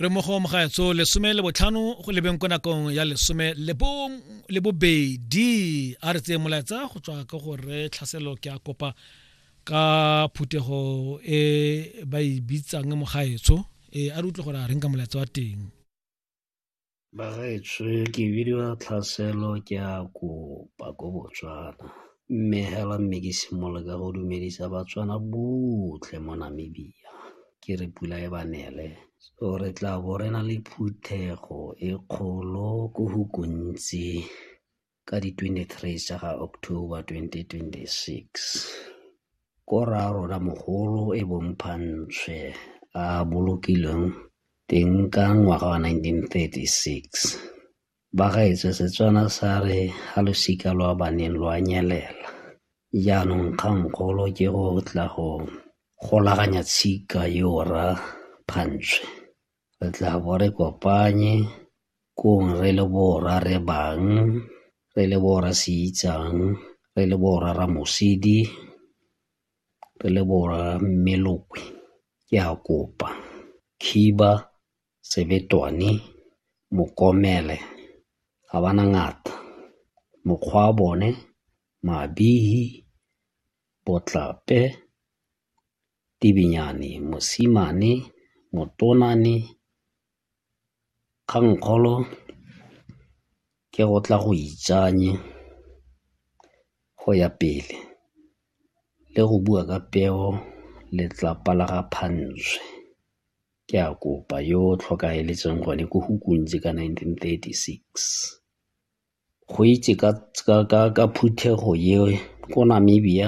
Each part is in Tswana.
re mo go mogaetso lesome le botlhano go lebeng ko nakong ya lesome le bobedi a re tseye molaetsa go tswa ka gore tlhaselo ke a kopa ka phuthego e ba e bitsang mogaetso e a re utlwe gore a reng ka molaetsa wa teng Bagaetsho ke bidiwa Tlhaselo ke a kopa ko Botswana. Mme hela mme ke simolole ka go dumedisa Batswana botlhe mo Namibia ke re pula e ba nele. So re tla bo re na le phuthego e kgolo ko go gontsi. ka di 23 tsa ga October 2026. Ko rraarona mogolo e bong Phantshwe a bolokilweng teng ka ngwaga wa 1936. Bagaetswe Setswana sa re ga losika lwa baneng lwa nyelela. Jaanong kgangkgolo ke go tla go golaganya tshika yo ra Phantshwe. re tla bo re kopanye kong re le borra re bang, re le borra se itsang, re le borra Ramosidi, re le borra Mmelokwe. Ke a kopa khiba, sebetwane, mokomele ga ba na ngata mokgwa wa bone mabifi, botlape Tibinyane, Mosimane, Motonane, Kgangkgolo ke go tla go itsanye go ya pele le go bua ka peo letlapa la ga Phantswe. Ke a kopa yo o tlhokaeletseng gone ko go kuntse ka nineteen thirty six. Go itse ka phuthego eo ko Namibia.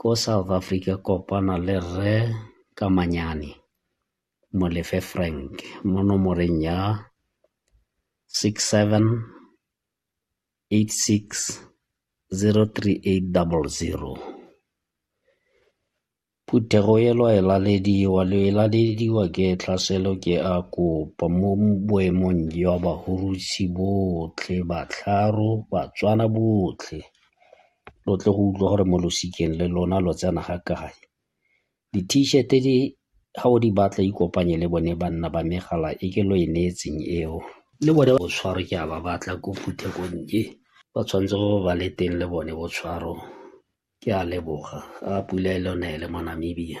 Ko South Africa kopana le Rre Kamanyane Molefe Frank mo nomoreng ya, 678603800. Phuthego e lo e lalediwa, lo e lalediwa ke tlhaselo ke a kopa mo boemong jwa bahurusi botlhe, Batlharo, Batswana botlhe. lo tle go utlwa gore mo losikeng le lona lo tsena ga kae. Di-t-shirt di ga o di batla ikopanye le bone banna ba megala e ke lo e neetseng eo le bone botshwaro ke a ba batla ko phuthekonnye ba tshwanetse go ba le teng le bone botshwaro ke a leboga a pula e le one ele mo Namibia.